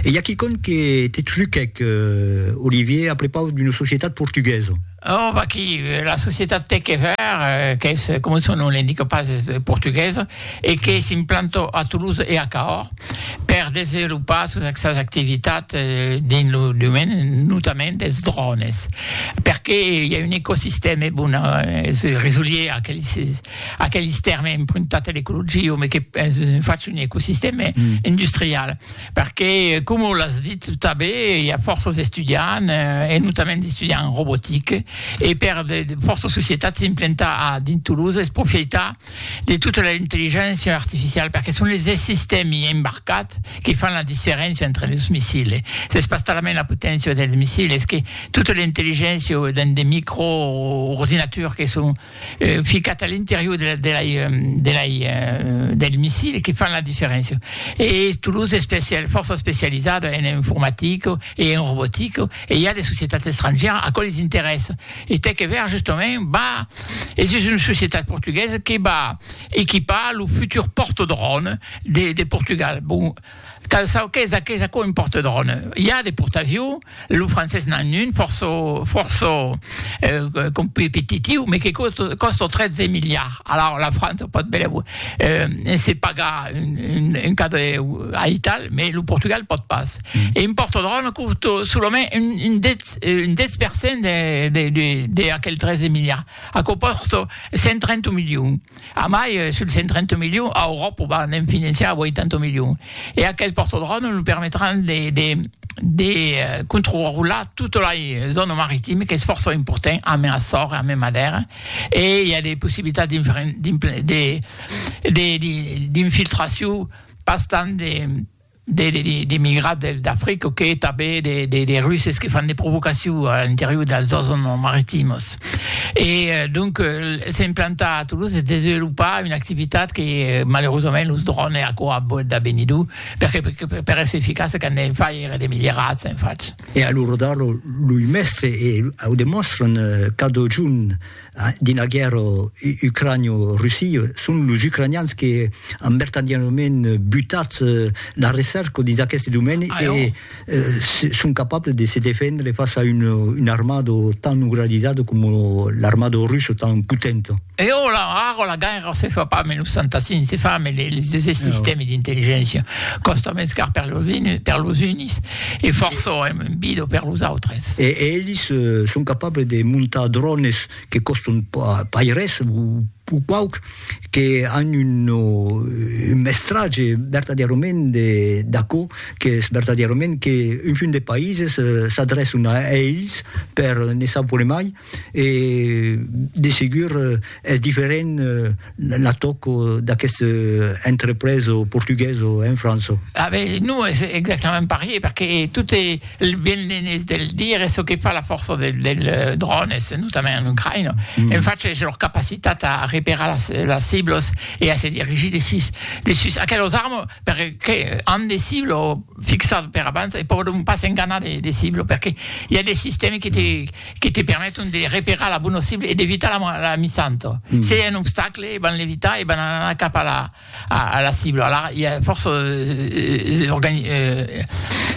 E i a quicòm que te truquèc, Olivier, a prepaus d'una societat portuguesa. Oh, vaquí, la societat Techever, qu'es, coma son nom l'indica pas, es portuguesa e que s'implanta a Toulouse e a Cahors per desenvolopar sos sas activitats dins lo domaine notament dels drònes, perqué i a un ecosistèma, bon, se resolier a aqueles. Aqueles tèrmes empruntats a l'ecologia, me que fach un ecosistèma industrial, perque coma l'as dit tanben, i a fòrça d'estudiants, e notament d'estudiants en robotica, e per de fòrça societats implantar a dins Toulouse es profieitar de tota l'intelligéncia artificiala, perque son les sistèmi embarcats que fan la diferéncia entre los missils. S'es pas talament la poténcia dels missils, es que tota l'intelligéncia dins de micro ordinaturs que son euh, ficat a l'interior de la, de lai, euh, de lai, euh, del missil que fan la diferéncia. E Toulouse es especial, fòrça especializada en informatica e en robotica e i a de societats estrangièras a qual es interès. E t'ai que ver justament, va, es just una societat portuguesa que va equipar lo futur portadròn de, de Portugal. Bon, Cal çò qu'es aqueth aquò un porte-drone. I a de portaviu, lo francés n'an un, fòrça, fòrça competitiu, me que còsta 13 miliards. Alaur la França o pòt belèu se pagar un cada aital, me lo Portugal pòt pas. E un porte-drone còsta solament un 10, un 10 per cent de aquel 13 miliards. Aquò còsta 130 milions. A mai, sul 130 milions, a Euròp o va ne'n finançar 80 milions. E aquel pòrtodròme lo permetràn de controrular tota la zòna maritima qu'es fòrça important a mai Açores e a mai Madèra, e i a de possibilitats d'infiltracion pas tant d'emigrats d'Africa que tanben de Russes que fan de provocacion a l'interior dels zòns maritimos. E donc se implantar a Toulouse e desenvolupar una activitat que malerosament los drònes aquò a boet de benir dur, perque per èsser eficace qu'an de faire de milierats en fach. E a l'ora d'ara loi mèstres e au demòstran cada jorn. Dins la guèrra ucranio-russia, son los ucranians que an vertadièrament butat la recerca dins aqueste domèni e son capables de se defendre fas a una armada tan organizada coma l'armada russa tan potenta. E ara, ara la guèrra se fa pas menus santa si se fa, mas los sistèmes d'intelligéncia còsta mens car per los uns E fòrça èm un bido per los autres. E elis son capables de montar drònes que còstan pas res, o pauc, que an un mestratge vertadièrament d'aquò qu'es vertadièrament qu'un munt de païses s'adrèçan a elis per ne savoir mai, e de segur es diferent la tòco d'aqueste entrepreso portugueso en França. Ah ben, non es exactament parier, perque tot e ben l'enés de le dire, es çò que fa la fòrça del dròn, es notament en Ucraïna, en fach es lor capacitat a reperar las las ciblos e a se dirigir de sus de sus aquelos armes, perque an de ciblo fixat per abans e pòdon pas enganar de de ciblo, perque i a de sistèmi que te que te permeton de reperar la bona cibla e d'evitar la la la misanto. Mm. Se i a un obstacle, e van l'evitar e van anar cap a la, a, a la cibla. Alara, i a fòrça eh, eh, organi, eh,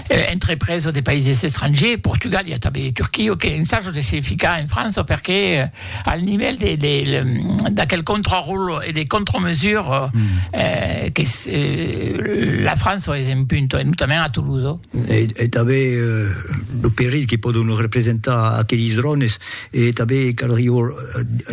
eh, entrepresa de païses estrangers, Portugal, i a tanben de Turquia, que ensajo de se ficar en França perque eh, al nivèl de, de, de, d'aquel contraròl e de contramesura mm. eh, que eh, la França es en punta, e notament a Toulouse. e tanben lo perilh que pòdon representar aquelis drònes, e tanben caldriá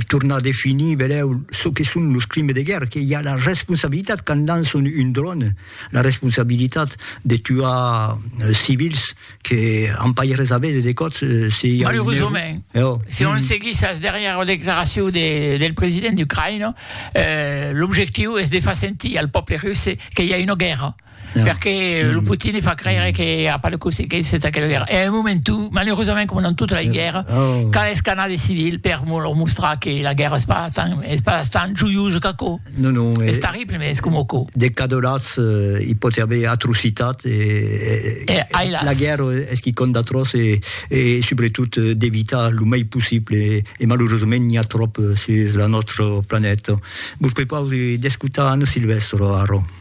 tornar a definir benlèu çò que son los crimes de guèrra, que i a la responsabilitat quand lançon un dròn, la responsabilitat de tuar civils que an pas res a veire de còps se i a un error. Malerosament, se on seguís as darrièras declaracions del president ucraïnés, l'objectiu es de far sentir al pòble russe que i a una guèrra. Yeah. Perque mm. lo Putin e fa creire que a pas de consequences de aquella guerra. E a un moment tu, malheureusament, com dans tota la guerra, oh. cal escanar de civil per leur mostrar que la guerra es pas tan, es pas tan joiosa qu'aco. Non, non. Es eh, terrible, mais es com aco. De cadolats, euh, il pot y avoir atrocitat. E, e, e, e la guerra es qui compte d'atroç e, e sobretot euh, d'evitar lo mai possible. E, e malheureusament, n'hi a trop euh, sur la nostra planèta. Vos prepau d'escutar Anne Silvestre, Aro.